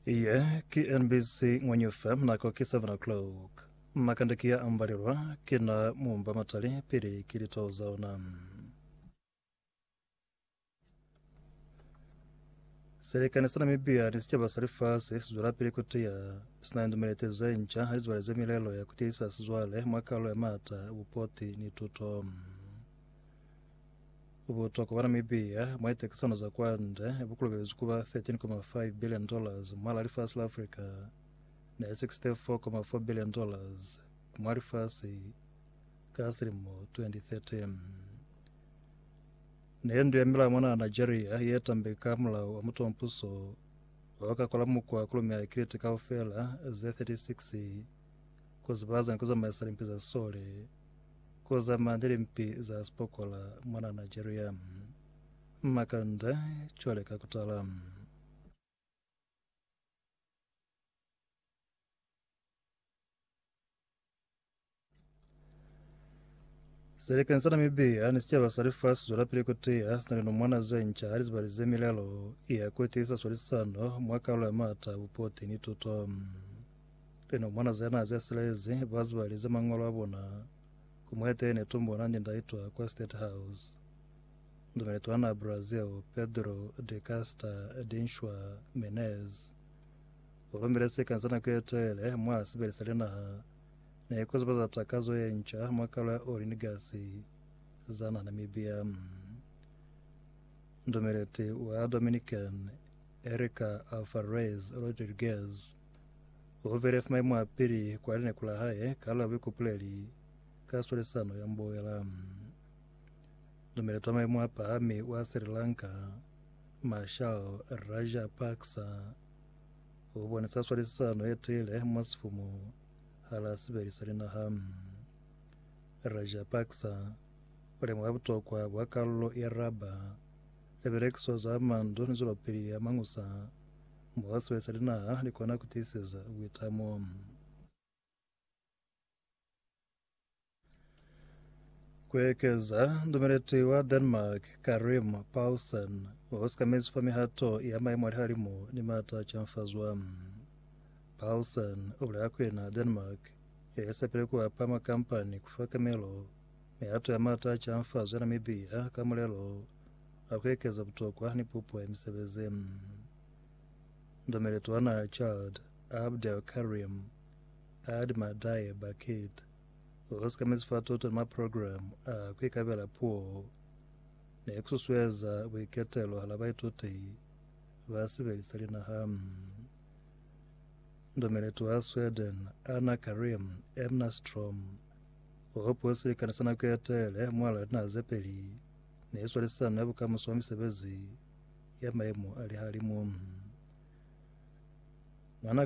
Iye ki NBC Ngwenyu FM nako ki 7 o'clock. Makande ki ya ambalelwa ki na mumba matali pili ki litao za ona. Selekani sa Namibia ni sicaba sa lifasi sizwelapili kutiya sina lidumelete zenca halizibalize milelo ya kutiyisa sizwale mwa kalo ya maata, bupoti ni tuto. Ubutwa kwa Banamibia mwa litekisano za kwande bukulubelezwi kuba 13.5 billion dollars mwala lifasi la Africa ne 64.4 billion dollars mwa lifasi ka silimo 2013 neendu ya milao mona Nigeria ye tambe ka mulao wa mutompuso wa ka kola mukwa kulume ya kiliti kaufela ze 36 kuzibaza ni kuzamaisa limpi za sole ku zama ni limpi za sipokola mwana Nigeria. Makanda cwale ka kutala. Selekeni sa Namibia ni sicaba sa lifasi zwelapili kutiya sina linumwana zenca halizibali ze milelo ya kutiisa swalisano mwa kalulo ya maata, bupoti ni tuto. Lena mwana ze naze silezi ba zibalize mangwalo a bona ku mwetene tumbo na nindaitwa kwa State House. Ndumeletwa na Brazil Pedro de Casta Dinshwa Menez. O romile sika za nako ye tele mwa sibeli sa linaha ne ku zibaza takazo ye nca mwa kalo ya oli ni gasi za naha Namibia. Ndumeleti wa Dominican Erika Alvarez Rodriguez Hubile fa maimu a pili kwa lineku la hae ka la buikupuleli ka swalisano ya mboela. Dumela twa maimu a pahami wa Sri Lanka, Marshal Rajapaksa, u bonisa swalisano ye tiile mwa sifumu hala sibeli sa linaha. Rajapaksa u lemuha butokwa bwa kalulo ya raba, libelekiso za mandu ni zwelopili ya mañusa Mwa sibe sa linaha likona kutiiseza buitamo. Kuekeza, Ndumeleti wa Denmark Karim Paulsen usikamezi fa mihato ya maimo alihalimu ni mata a chanfazwa. Paulsen ubulela kuli na Denmark yalisepile kuapa makampani kufa kamelo mihato ya mata a chanfazo ya Namibia ka mulelo a ku ekeza butokwa ni pupo ya misebezi. Ndomele Tona Chald Abdel Karim Aad Madaye Bakit o hosikamezi fa toto ni maprograme a ku ikabela puo ne ku susueza buiketelo hala baituti ba sibeli sa linaha. Ndomele Tona Sweden Anna Karim Emnastrom o hopuo silikani sa nako ye tele mwa lwa linaha ze peli ne i swalisisana ni bukamuso bwa misebezi ya maimo a lihalimu. Mwan'a